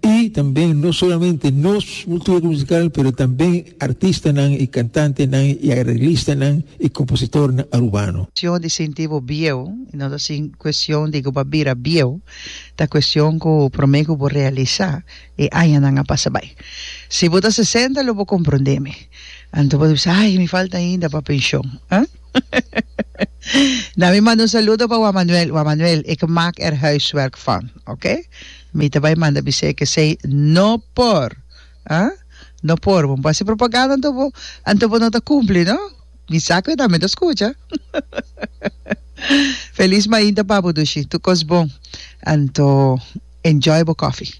Y tambe no solamente nos cultura musical pero tambe artistanan y cantantenan y arreglistanan y compositornan Arubano. Cuestion di sinti bo bieu y no ta sin cuestion di cu bo a bira bieu, ta cuestion cu prome cu bo realisa e añanan a pasa bay. Si bo ta sesenta lo bo comprende mi, anto bo ta bisa ay mi falta ainda pa pension, ah? Na mi manda un saludo pa Juan Manuel. Juan Manuel, ik maak er huiswerk van, ok? Mi ta bai manda bisé ik esei no por. Huh? No por, bo no por hasi propaganda anto bo, anto bo no ta cumpli, no? Mi sa cu e tambe ta scucha. Feliz mainta, papu Dushi. Tur cos bon. Anto, enjoy bo coffee.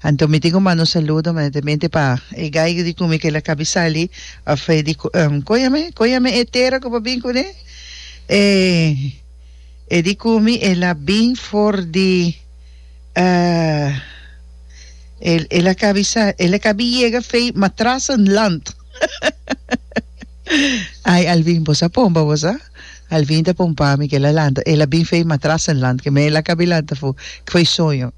Anto mi tin ku manda un saludo manetamente pa e gaigu di kumi kila kabisali of e di kon yam'e kon yam'e e tera ku por bin kuné e e di kumi el a bin for di el el a kabi sa el a kabi yega fei matrassenland ai Alvin bosa pomba bosa. Alvin ta pompa mi ke el a lanta. El a bin fei matras en land ke me el a kabi lanta fu. Ke foi soño.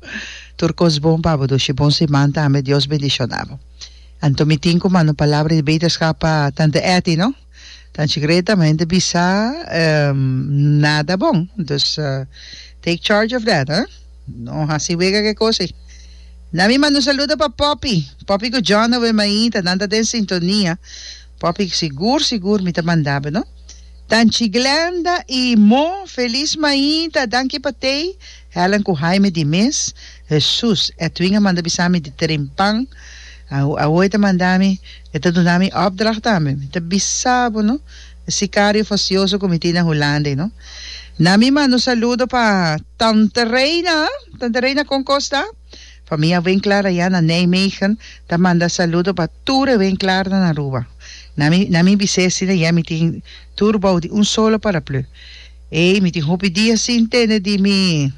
Tur kos bon pa bo Dushi. Bon siman tambe. Dios bendishona bo. Anto mi tin ku manda un palabra di beterskap pa tante Etty no. Tanchi Greta mi hende bisa nada bon. Dus take charge of that eh. No hasi wega ke kosi. Na mi manda un saludo pa Poppy. Poppy ku John awe maita nan ta den sintonia. Popic, Sigur, sigur mi ta mandab'e no. Tanchi Glenda y Mo, Feliz Maita, danki pa tei, Helen cu Jaime di mes. Hesus, Edwin a manda bisa mi di tren pan. Awo e ta manda mi, e ta duna mi opdracht tambe. Mi ta bisa bo no, e sicario facioso cu mi tin na Hulanda ei no. Na mi manda un saludo pa Tante Reina, Tante Reina con kosta? Pa mi a wen klar ayá na Nijmegen ta manda saludo pa tur e wen klar nan Aruba. Na mi na mi bisé asina ayá mi tin tur bou di un solo paraplu. Ey mi tin hopi dia sin tene di mi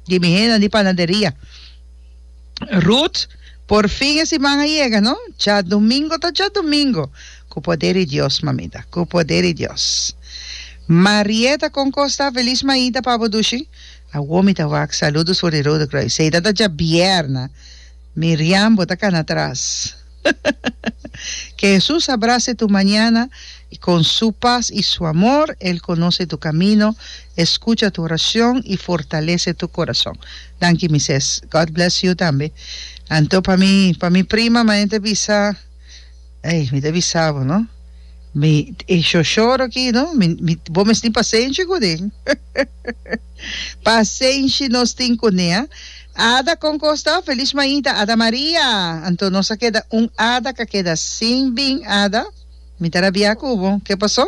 di mi hennan di panaderia. Ruth, Por fin e siman a yega no. Djadumingo ta djadumingo. Cu poder di Dios mamita, cu poder di Dios. Marietta, Con cos ta? Feliz maita pa bo dushi. Awo mi ta wak saludos for di Rode Kruis. Hei dat a djabièrna. Miriam bo ta kana atras. Ke Hesus abrase tu mañana i kon su pas i su amor. El konose tu kamino, e skucha tu orashon i fortalese tu korason. Danki mi ses. God bless you tambe. Anto pa mi pa mi prima mañana ta bisa. Ey, mi ta bisa bo no, mi, e shoshoro aki no, mi, mi, bo mes tin pasenshi kunin. Pasenshi nos tin kuné, a. Ada kon kosta, feliz mainta, Ada Maria. Anto nos a keda un ada ka keda sin bin ada, mi ta rabia ku bo, ke paso?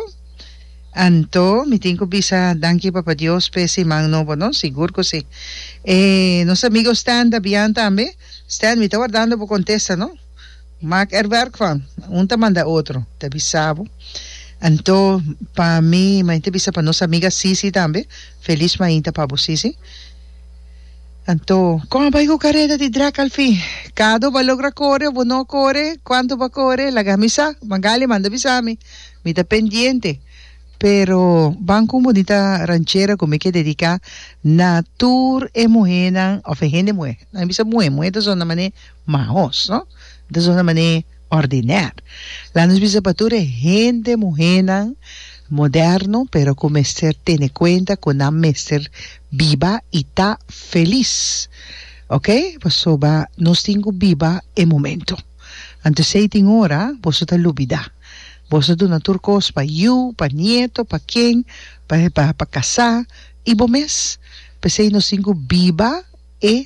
Anto mi tin ku bisa danki Papa Dios pe siman nobo no, sigur ku si. E nos amigo Stan ta bian tambe, Stan mi ta wardando bo kontesta no. Mak er werk van, un ta manda otro ta bisa bo, anto pa mi main ta bisa pa nos amiga Sisi tambe, feliz main ta pa bo Sisi, anto con a bai cu careda di drag al fin, cado ba logra core o bo no core, cuanto ba core laga mi sa, Magali manda bisa mi, mi ta pendiente, pero ban cu un bonita ranchera cu mi ke dedica na tur e muhenan of e hende muhe, nan bisa muhe, muhe ta zona mane. Ma aos no ta zona man'é ordinèr. La'a nos bisa pa tur e hende, muhénan moderno, pero ku mester tene kuenta ku nan mester biba i ta felis. Oke, pasobra nos tin ku biba e momentu. Anto esei tin ora boso ta lubidá. Boso a duna tur kos pa yu, pa nieto, pa ken, pa pa kasá i bo mes. P'esei nos tin ku biba e.